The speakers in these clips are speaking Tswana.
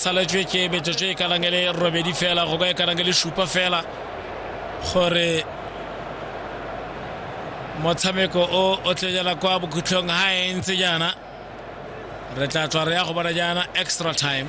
saletswe ke metsotso e kanang e le robedi fela go ka e kanang e le supa fela gore motshameko o o tlenyela kwa bokhutlhong ga e ntse jaana re tla tswa re ya go bona jaana extra time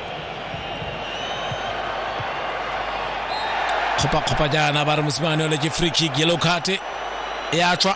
kopakgopa jaana ba re mosimane ole ke free kick yellow card e a tswa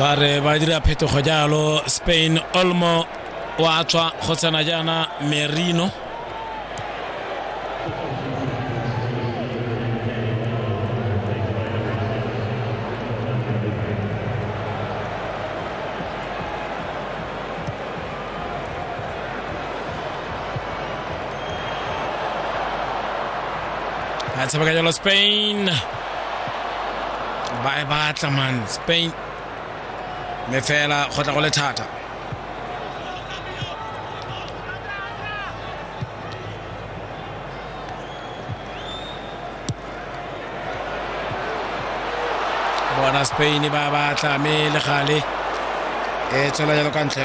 ba re ba dira phetogo jalo spain olmo wa tswa go tsena jaana merino se va a los Spain. Bye bye, man. Spain. Me fela go tla go le thata. bona spain ba ba tlame le gale e tswela jalo ka ntle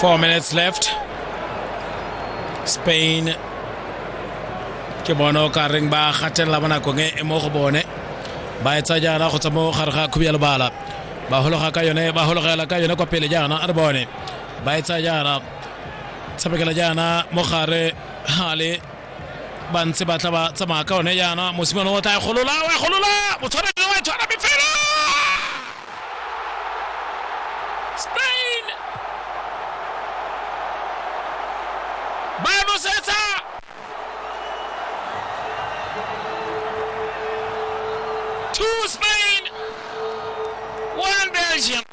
Four minutes left. Spain ke bone o ka reng ba gatelela mo nakong e mo go bone ba etsa jaana go tsa mo gare ga khubi ya lebala ba hologa ka yone ba hologela ka yone kwa pele jaana a re bone ba etsa jaana tshamekela jaana mo gare hale ba ntse ba tla ba tsamaya ka one jaana mosimane o tla e golola o e golola motshwanedi wa e tshwara mme fela spain ba e nosetsa two spain one belgium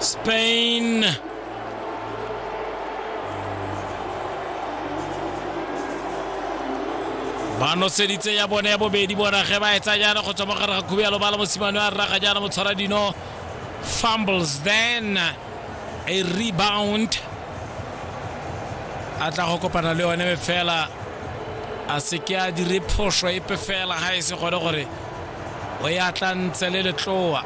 Spain. ba noseditse ya bone ya bobedi bona ge ba etsa jaana go tswa mo gare ga khubialo ba la mosimane a rraga jaana motshwara dino fumbles then a rebound a tla go kopana le yone be fela a se ke a dire phoso epe fela ga e se gone gore o ya tla ntse le letloa